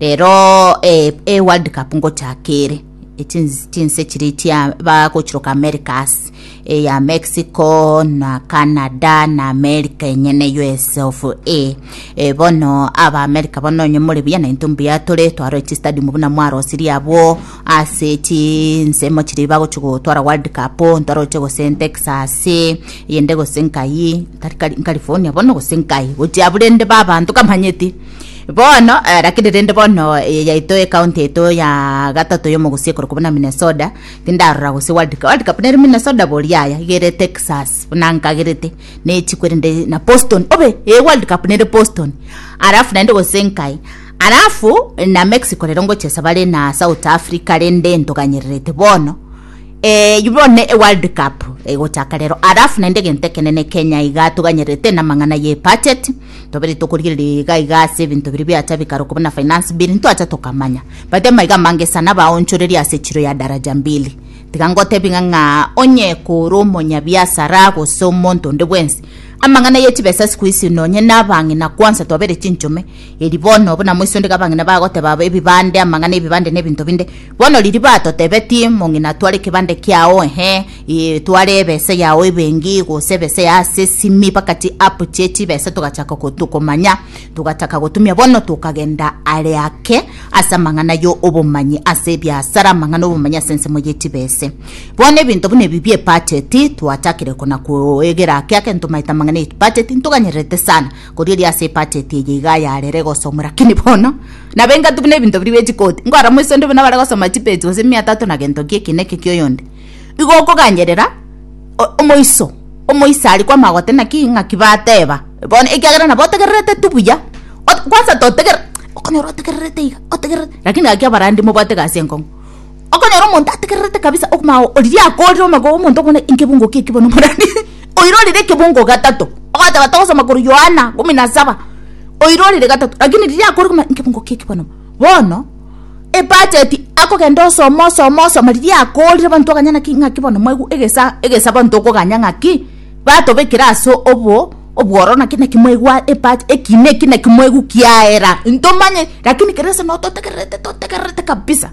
Rero e world cup ngochaka ere chinse chiri chia bagochiroka americas eya mexico na canada na america enyene us of a e, bono aba america bono onye more buya na into mbuya tore twaro chi stadium buna mwarosirie abwo ase chinsemo chiri bagochi gotwara world cup ntwaroche gose texas yende gose nkai tari california bono gose nkai gochia burende babanto kamanyeti bono eh, lakini rende bono eye yaito ekaunti yaito ya gatato yomogusie korokwa buna minnesota tindarora gose world cup world cup nere minnesota boriaya igere texas buna nkagerete nechikwerende na boston obe ee world cup nere boston alafu naende gose nkai alafu na mexico rero ngochesa bare na south africa rende ntoganyererete bono Eh, yubone e world cup egochaka rero alafu naende egento ekenene kenya iga toganyerete namang'ana ye budget Twabire tokorigereria iga iga ase ebinto biria biacha bikarokwa buna finance bill ntwacha tokamanya. Bati amaiga amange sana baonchoreria ase chiro ya daraja mbili. Tiga ngotebi ng'a ng'a onye kore omonyabiasara gose omonto onde bwensi. Amang'ana ye chibesa siku hizi nonye na abang'ina kwanza twabere chinchome. Eri bono buna moise onde iga abang'ina bagoteba aba ebibande amang'ana ebibande na ebinto binde. Bono riria batotebetie mong'ina tware ekebande kiao ehe. Ee, tware ebese yao ebengi gose ebese ya ase esimi bakati app chie chibese togachaka gotokomanya togachaka gotumia bono tokagenda are ake ase amang'ana yo obomanyi ase ebiasara amang'ana obomanyi ase ensemo ye chibese bono ebinto buna ebi bie budget twachakire kona koegera ake ake ntomaete amang'ana ye budget ntoganyererete sana kori eri ase ebudget eye iga yarere gosomwa lakini bono nabo engaki buna ebinto biri bie chikoti nkorora moisende buna bare gosoma chipage gose mia tatu na gento nki eki neke kia oyonde Igo okogancherera omoiso, omoiso aria kwamagote naki ng'aki bateba, bono ekiagera nabo otegererete tu buya, ot kwansa totegereri okonyora otegererete iga otegereri lakini gaki abarandi mobwate egasi enkong'u. Okonyora omonto ategererete kabisa okoma oo oriria akorire omago omonto okobuna ekebungo keki bono omorani oira orire ekebungo gatato, ogoteba togosoma korwa Yohana kumi na saba, oira orire gatato, lakini riria akorire okobuna ekebungo keki bono bono. ebudget akogenda osoma osoma osoma riria akoorire abanto bakaganya naki ng'aki bono mwaigwa egesa egesa abanto okoganya ng'aki batobekire ase obo obwororo naki naki mwaigwa ebudget ekina eki naki mwaigwa kiaera ntomanye lakini kera ense noo totegererete totegererete kabisa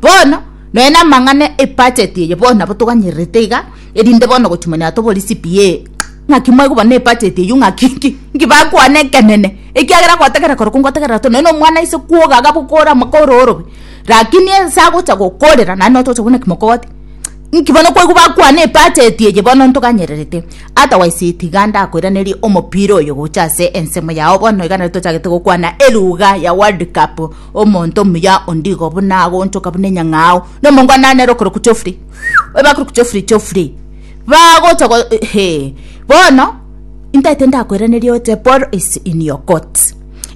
bono nonya na amang'ana ebudget eye bono nabo toganyererete iga. Erinde bono gochimonya atobori CPA ng'aki mwaigwa ne budget eyio ng'aki nki nki bakwane ekenene ekiagera gwategerera korokwo ngwategerera to nonya omwana ise kwoga agabokora amaka ororobe rakini ase agocha gokorera naende notogocha kobuna kimokogote nki bono kwaigwa bakwane ebudget eye bono ntoganyererete otherwise tiga ndakoiranerie omopira oyo gocha ase ensemo yao bono iga nere tochagete gokwana eluga ya world cup omonto omuya ondigo buna agonchoka buna enyang'ao nomongwana nere okorokwa Geoffrey. Ebakuru chofri chofri bagocha go he bono intagete ndakwereneria oche Paul is in your court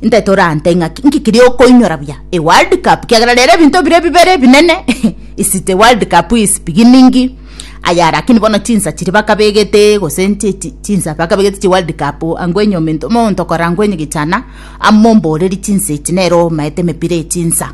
intagete orante ng'aki nki kiria okoinyora buya e world cup kiagera rero ebinto bire bibere ebinene is the world cup is beginning aya lakini bono chinsa chiri bakabegete gose nchi chi- chinsa bakabegete chi world cup angwenye omento omonto okora angwenye gichana amomboorerie chinsa echi nero omaete emepira echinsa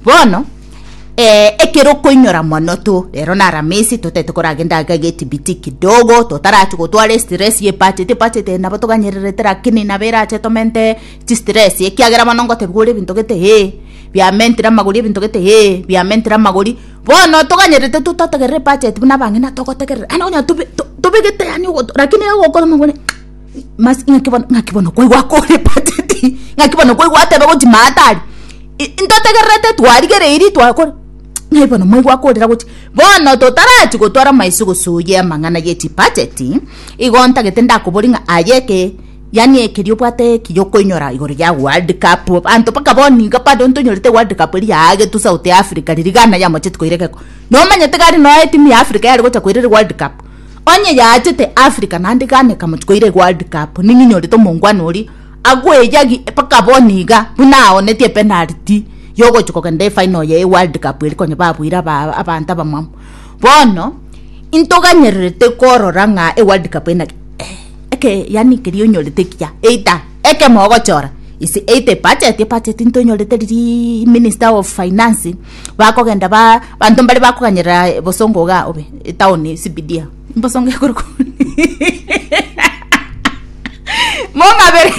Bono, ee, ekero okoinyora mono to, rero na Aramisi totaete koragenda iga getibiti kidogo, totarachia gotwara estress ye budget, ebudget eye nabo toganyererete lakini nabo erache tomente chistress, ekiagera bono ngotebiwa ore ebinto gete ee, biamentire amagori ebinto gete ee, biamentire amagori, bono toganyerete to totegerera ebudget buna abang'ina togotegerera, yaani onye tobe to tobegete yaani ogoto lakini egokora omobore ng'a. Mas- ng'aki bono ng'aki bono kwaigwa akorepateti ng'aki bono kwaigwa ateba gochi maatari i- ntotegererete twarigereiri twakora ng'ai bono mwaigwa akorera gochi bono totarachi gotwara amaiso gose oye amang'ana ye chibacheti igo ntagete ndakobori ng'a aye eke yaani ekeria obwate ki yokoinyora igoro ya world cup abanto mpaka bono niga bado ntonyorete world cup eria yaagetwe south africa riria ghana yamocheti koira egeko nomanyete gari noe etimu ya africa yare gocha koira ere world cup. Onye yaachete Africa naende Ghana ekamochia koira eWorld Cup, ning'o nyorete omongwana oria agoeyagi mpaka bono iga buna aoneti epenalty yogochia kogenda efinal ya eWorld Cup eria konya babuire aba abanto abamwabo. Bono intoganyererete korora ng'a eWorld Cup eye naki eh eke yaani keria onyorete ekiya either ekemo ogochora ise either ebudget, ebudget ntonyorete riria Minister of Finance. bakogenda ba banto mbare bakoganyerera eh, bosongo iga obe etaoni CBD ah. bosongo ekoro mong'abere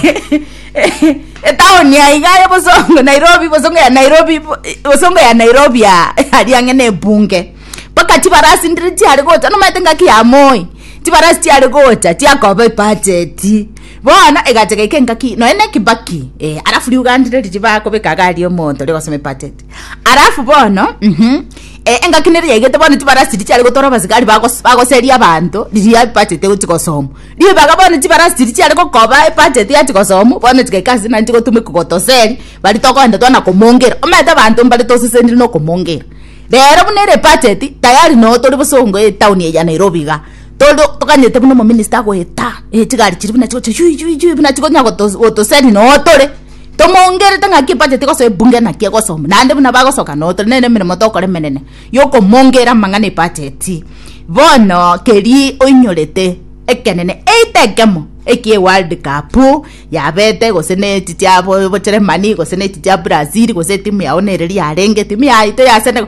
etaoni ya iga ya bosongo nairobi bosongo ya nairobi bo- bosongo ya nairobi ya aria ang'e na ebunge mpaka chibarasi ndire chiare gocha nomanyete ngaki ya moi chibarasi chiare gocha chiakoba ebacheti Bono egacha gaika engaki nonya na ekebaki eh, alafu riugandi riri riba kobeka agari omonto rigosoma epatete alafu bono mhm eh, engaki nere yaigete bono tibarasi richiare gotora abasigari bagos- bagoseria abanto riria epatete gochi gosoma ribaga bono chibarasi chiri chiare gokoba epatete yachi gosomu bono chigaika ase nari chigotumeka gotoseri bari togoenda twana komongera omanyete abanto mbare tosesenire na okomongera rero buna ere ebacheti tayari no tori bosongo etaoni eye ya Nairobi iga Toro toganyete buna omominista agoeta eh chigari chiria buna chigochia yui yui yui buna chigonya gotos gotoseri noo tore tomongerete ng'aki ebudget egosoa ebunge naki egosoma naende buna bagosoka noo tore nere emeremo tokora emenene yokomongera amang'ana ebudget. Bono keria oinyorete ekenene either ekemo ekie world cup yabete gose ne echi chiabo obocheremani gose ne echi chia Brazil gose etimu yago nere riarenge etimu yaito ya Senegal.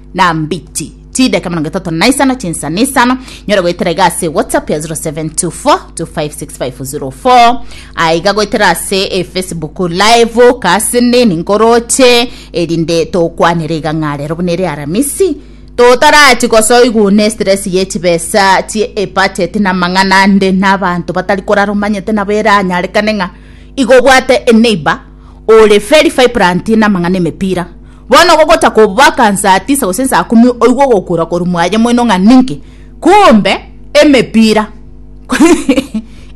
na mbichi chidaka mirongo etato na isano chinsa na isano nyora goetera iga ase whatsapp ya 0724256504 aiga goetera ase e facebook live kasini ninkoroche erinde tokwanere iga ng'a rero buna ere aramisi totarachi gosoigwa ne stress ye chibesa chie ebudget na mang'ana ande na abanto batari korara omanyete nabo eranyarekane ng'a igo obwate eneiba ore very vibrant namang'ana emepira bono gogotaka obaka nsaa tisa gose nsaa kumi oigwe ogokura korwa mwaye moino ng'a ninki kumbe emepira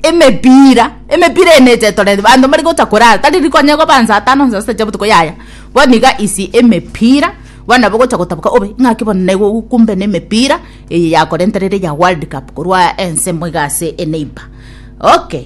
emepira emepira eye neche etorete abanto mbare gotaka korara tari rikonye koba nsaa tano nsaa sita chia botuko yaya bono iga isi emepira bono nabo ogocha gotaboka obe ng'aki bono nairobi kumbe na emepira eye yakorenterire ya world cup korwa ensemo iga ase eneiba okay.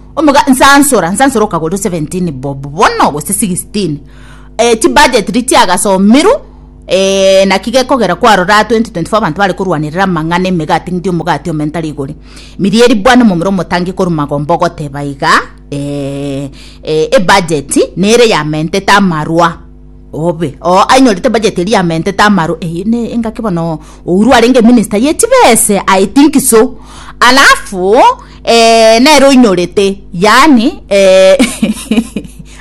Omoga, nsansora, nsansora okagorwa 17 bob bono gose 16. Eh, ti budget ri tiagasomirwe. Eh, naki gekogera kwarora 2024 abantu bare korwanerera amang'ana emegati ng'di omogati ome ntari igore. Mirieri bwana omomura omotangi korwa magomba ogoteba iga, eh, eh, ebudget nere yamentete amarwa. obe oo ainyorete bajeti eria yamentete amaro eye ne engaki bono ouru arenge minister ye chibese i think so alafu eh, nere oinyorete yani eh,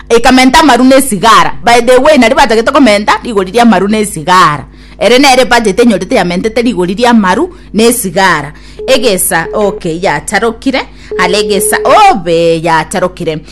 ekamenta amaru na esigara by the way nari batagete komenta rigori ria amaru na esigara ere nere bajeti enyorete yamentete rigori ria amaru na esigara egesa okay yacharokire ale egesa obe yacharokire